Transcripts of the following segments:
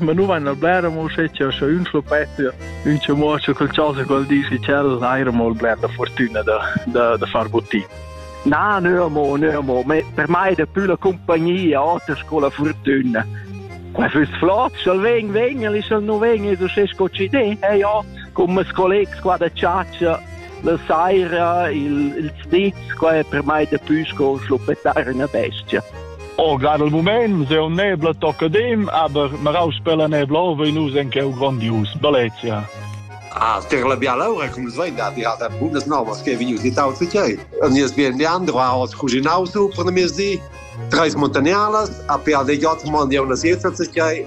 Ma nu vaina bler amo uschè cha scha ün schluppetta ün ce muocha col chasa col dis che tschel d'eira amo bler da furtüna da da da far buttin. Na, nö amo, nö amo, per mai dapü la cumpagnia oter sco la furtüna. Qua füss flot, sch'el vegn, vegn, el sch'el nu vegn, es uschè sco ci de, eh ja, cum mes collegs qua da chatscha La saira il, il zniz, qua è per mai daplü sco schluppetar üna bestia. Oh, gar il moment, se un nebla tocca dem, aber ma raus per la nebla ova in us en cheu grandius, Baletia. Ah, ter la biala ora, cum svein da dir da bundas novas che venius di tau che. Nies bien Leandro ha ot cuginau su per la mesi, treis montagnarlas, a per de jot mondia una siesta che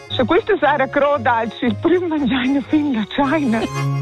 Sche questa sera croda els il prüm mangiaina fin la tschaina.